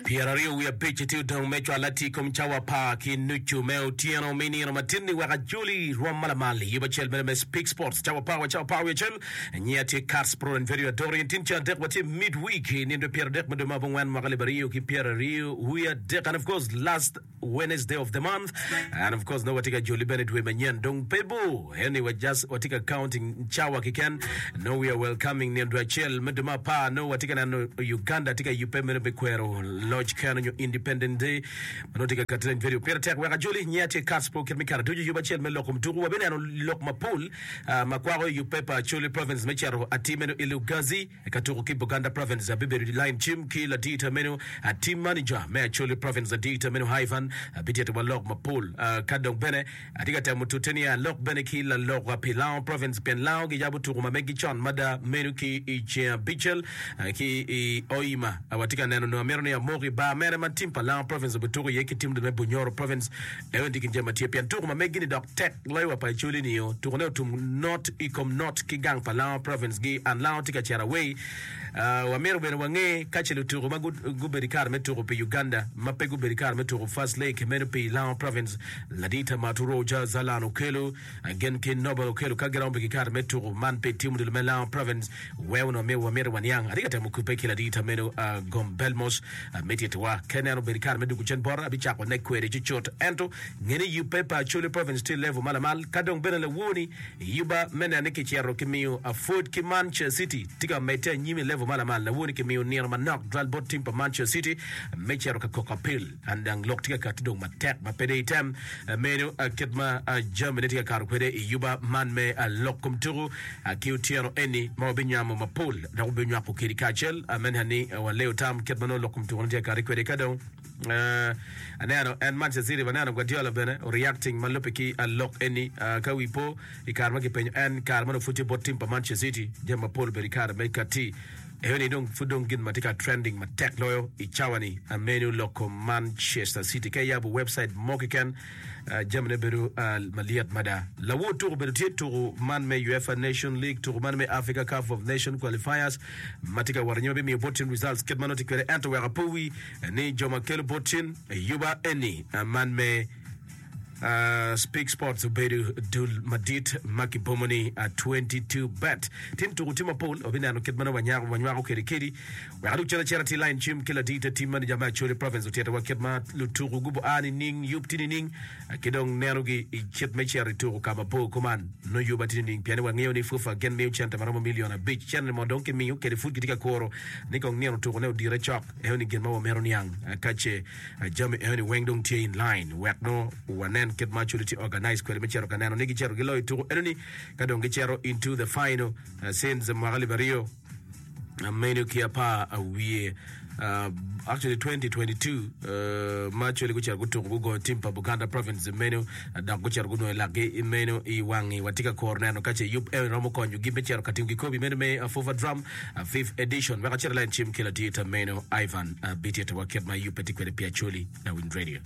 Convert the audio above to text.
Pyeraryo wiye abic itye odong me cwal atir ikom cawa apar ki nucu me otyeno me nino matinni wek ajoli rwom ma lamal iyub acel mere me Speak Sports cawa apar wa cawa apar wiye acel. Anyi atye Kats Proen Verio Adori en tin caa adek wa tye midweek i nino dwe pyeradek me dwe ma abongwen mwaka alip aryo ki pyeraryo wiye adek and of course last Wednesday of the month and of course nongo watye ka joli bene dwe manyen dong pe bor eni wa just watye ka counting cawa kiken nongo we are welcoming nino dwe acel me dwe me apar nongo watye ka neno Uganda tye ka yubbe meno me kwero loc keno nyo independent day ma nongo tye ka kati leng video pire tek wek ajoli nyinga tye Catspo kit me kare ducu yub acel me loko mutuku wabineno lok mapol ah, ma kwako i yub paper Acholi province me cito atir meno i Lugazi Eka tuko ki Buganda Province abibedo i lain cim ki ladita meno a Team Manager me Acholi Province ladita meno Ivan abitito wa lok mapol ka dong bene atye ka temo tute ni alok bene ki lalok pi Lango Province pien Lango giyabo tuko ma megi con mada meno ki i ceng abicel ki i Hoima watye ka neno nongo amito ni amok i bar mene ma team pa Lango Province obituko iye ki team me Bunyoro Province En ondik i jami ma tye pien tuko ma megi-ni dok tek loyo wa pa Acholi nio. Tukone otum not i kom not ki gang pa Lango Province gi and Lango tye ka cito away. Wa myero bene wa nge ka ce lutuko ma gubedo i kare me tuko pi Uganda ma pe gubedo i kare me tuko First League meno pi Lango Province, Ladita Maturo Jazalan okelo. Agen ki Nobel okelo ka giromo pi kikato me tuku man pi tim odilo me Laon Province wee onongo myero wamiti waniang. Atye ka temo kubbe ki ladita meno Gombel mos. Amiti itiwa. Ka ineno obedo kare me duku cen bota, abicako nek kwede cucut. Ento, nge ni yubbe pa Acholi Province tye level ma lamal, ka dong bene lawoni yubba me neno ni kicito kimiyo Afod ki Mancha City tye ka medde anyim i level ma lamal, lawoni kimiyo nino manok dwal bot tim pa Mancha City me cito ka koko apil. An dang lok tye ka kati dong matek ma pe dong item meno kit ma jamine tye ka kato kwede i yuba man me lok kom tuku ki otyeno eni ma wabinyamo mapol dok wabinywako kedi kacel amene ni waleyo tam kit ma nongo lok kom tukune tye ka kati kwede ka dong uh, aneno en Manchester City baneno Guardiola bene reacting ma lubbe ki lok eni uh, ka wi po i kare ma kipenyo en kare ma nopud tye bot tim pa Manchester City jami mapol obedo i kare me kati Eyo ni dong pud dong gin ma tye ka trending matek loyo i cawa ni amenu loko Manchester City. Ka iyabo website mo keken, jamine bedo malyet mada. Lawor tuku bedo tye tuku man me UEFA Nation League, tuku man me Africa Cup of Nation Qualifiers ma tye ka wot anyim bimiyo botchin results kit ma nongo tye kwede ento wek apowi ni jo ma kelo botchin yuba eni man me Speak Sports obedo dul madit ma kibomo ni 22bet. Tim tuko tye mapol, wabineno kit ma nongo wanyako wanywako kede kedi. Wek adug calo cera ti lain cim ki ladii te tim maneja me Acholi Province otyetewa kit ma lutuku gubo a nining yub ti nining ki dong nenogi i kit me cito i tuku ka mabor kuman nongo yub a ti nining pien ni wangeyo ni FUFA gin miyo cente ma romo milion abic cente mo dong kimiyo kede pud kitye ka kuro ni kong nino tukune odire cok eno ni gin ma wamito niang ka ce Jami enoni weng dong tye in line wek nongo wanen kit ma culi tye organize kwede me cito ka neno ni gicito giloyo i tuku enoni ka dong gicito into the final uh, since mwaka alip aryo uh, meno ki apar uh, wiye uh, actually 2022 uh, ma culi gucito gutuku gugoyo tim pa Buganda province meno dok gucito gunongo i lakgi. I meno i wangi watye ka koro neno ka ce yub eno romo konyogi me cito ka timo kikobi meno me Afufa Drum Fifth Edition. Wek acit alain cim ki latir ta meno Ivan Bitito wa kit ma yubbe tye kwede pi Acholi na Wind Radio.